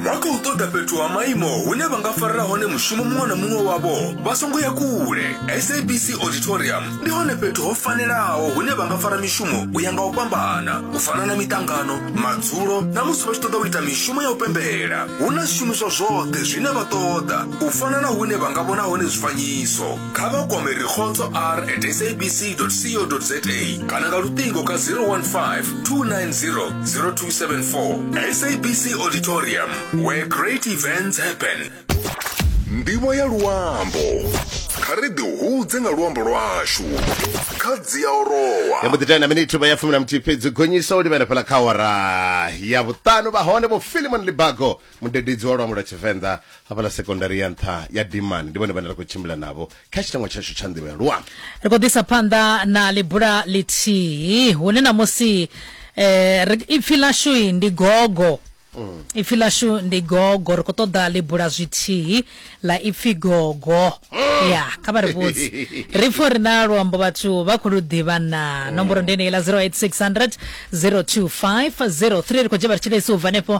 vha khou ṱoḓa fhethu ha maimo hune vha nga farela hone mushumo muṅwe na muṅwe wavho vha songo ya kule sabc auditorium ndi hone fhethu ho fanelaho hune vha nga fara mishumo u ya nga u fhambana u fana na miṱangano madzulo na musi vha tshi ṱoḓa u ita mishumo ya u pembela hu na zwishumiswa zwoṱhe zwine vha ṱoḓa u fana na hune vha nga vhona hone zwifanyiso kha vha kwame rikhotso r at sabc co za kana nga luṱingo ka 015 290 0274 sabc auditorium where great events happen ndivho ya luambo kha ri ḓihudze nga luambo lwashu kha dzi a orowa ya mbo ḓi tenda miniti vha ya fumi na muthihi fhedzi gonyisa u livhana fhala kha awara ya vhuṱanu vha hone vho filimon libago mudededzi wa luambo lwa tshivenḓa hafhaḽa sekondari ya nṱha ya dimani ndi vhone vhane ra khou tshimbila navho kha tshitangwa tshashu tsha nḓivho ya luambo ri khou ḓisa phanḓa na ḽibula ḽithihi hune ṋamusi eh, ri- ipfi ḽashu i ndi gogo ipfi ḽashu ndi gogo ri khou ṱoḓa ḽibula zwithihi ḽa ipfi gogo ya kha vha ri vhudzi ri pfo ri na luambo vhathu vha khou lu ḓivha na nomboro ndi yeneyi ḽa 0860 025 03 ri khou dzhia vha ri tshilesi u bva henefho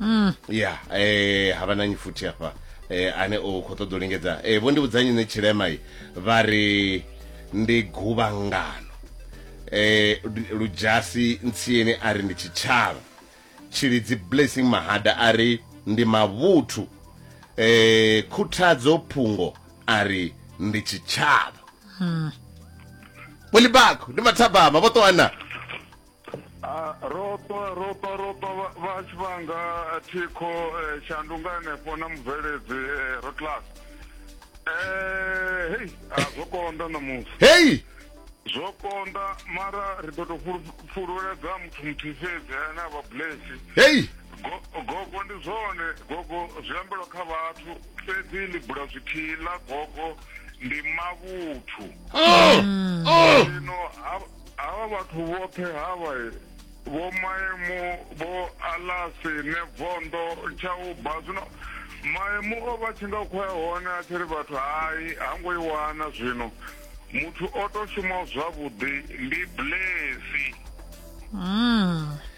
mm. ya eh, ha vhananyi futhi hafha eh, ane o khou ṱoḓa u lingedza eh, vho ndi vhudzanyi ne tshilema i vha ri ndi guvhangano eh, ludzhasi ntsieni a ri ndi tshitshavha tshilidzi blessing mahada a ri ndi mavhuthu eh, khuthadzo phungo a ri ndi tshitshavha mm. bolibako ndi mathabama vho ṱoana Ah, ro ṱwa ro ṱwa ro ṱwa vha- vha tshi vhanga eh, thikho eh, shandunga henefho na mubveledzi eh, ro class eh hei a zwo konda ṋamusi heyi zwo konda mara ri ḓo tou fulu- fululedza muthu muthihi fhedzi ane a vha blesi heyi Go- gogo ndi zwone gogo zwi ambelwa kha vhathu fhedzi ḽi bula zwithihi ḽa gogo ndi mavhuthu oh, oh. zwino ha- Havha vhathu vhoṱhe havha vho maemu vho alasi ne vondo tsha u ba zwino maemu o vha tshi nga khoya hone a tshi ri vhathu hai ha ngo i wana zwino muthu o to shuma zwavhuḓi ndi blesi mm.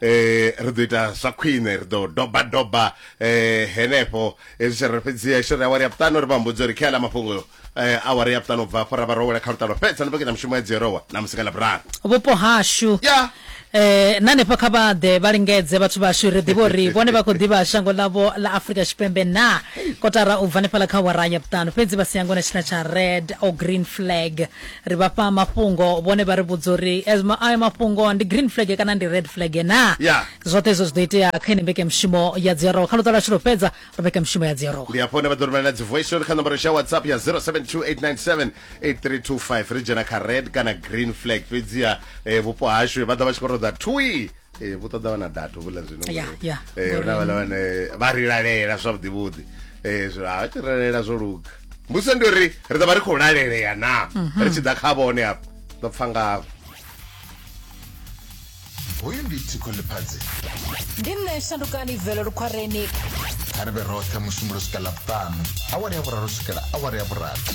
eh ri ḓo ita zwa khwine ri ḓo doba doba eh henefho ezwi tshi ri fhedzi a shiri awari ya vhuṱanu ri vha mbudza uri khela mafhungo eh awari ya vhuṱanu bva afho ra vha rowela kha lutalo fhedza ni vhekanya mushumo ya dzierowa na musi nga ḽavhuraru vhupo hashu ya eh na hanefha kha vha ḓe vha lingedze vhathu vhashu ri ḓivha uri vhone vha khou ḓivha shango ḽavho ḽa afurika tshipembe na kotara u bva hanefhaḽa kha wara ya vhuṱanu fhedzi vha si yango na tshina tsha red or green flag Ri vha fha mafhungo, vhone vha ri vhudza uri ayo mafhungo ndi green flag kana ndi red flag naa. Yeah. Zwoṱhe hezwo zwi ḓo itea kha ine mbekemushumo ya dziarowa. Kha luṱa lwashu lwo fhedza lwa mbekemushumo ya dziarowa. Ndi hafho hune vha ḓo rumela dzi voice note kha nomboro yashu ya WhatsApp ya 0728978325. Ri dzhena kha red kana green flag fhedziha vhupo hashu vha ḓa vha tshi khou ṱoḓa thwii. ee eh, vho ṱoḓa vha na data vhuḽa zwino ee eh, huna vhala vhane vha ri lalela zwavhuḓi vhuḓi ee zwo a tshi lalela zwo luga mbuso ndi uri ri ḓo vha ri khou lalelea na mhm. ri tshi ḓa kha vhone hafha ḓo pfha ngavho hoyu ndi tsiko ḽiphadzi ndi nṋe shandukani velo lukhwareni kha ri vhe roṱhe musumbulo swika ḽa vhuṱanu awari ya vhuraru swikela awari ya vhurathi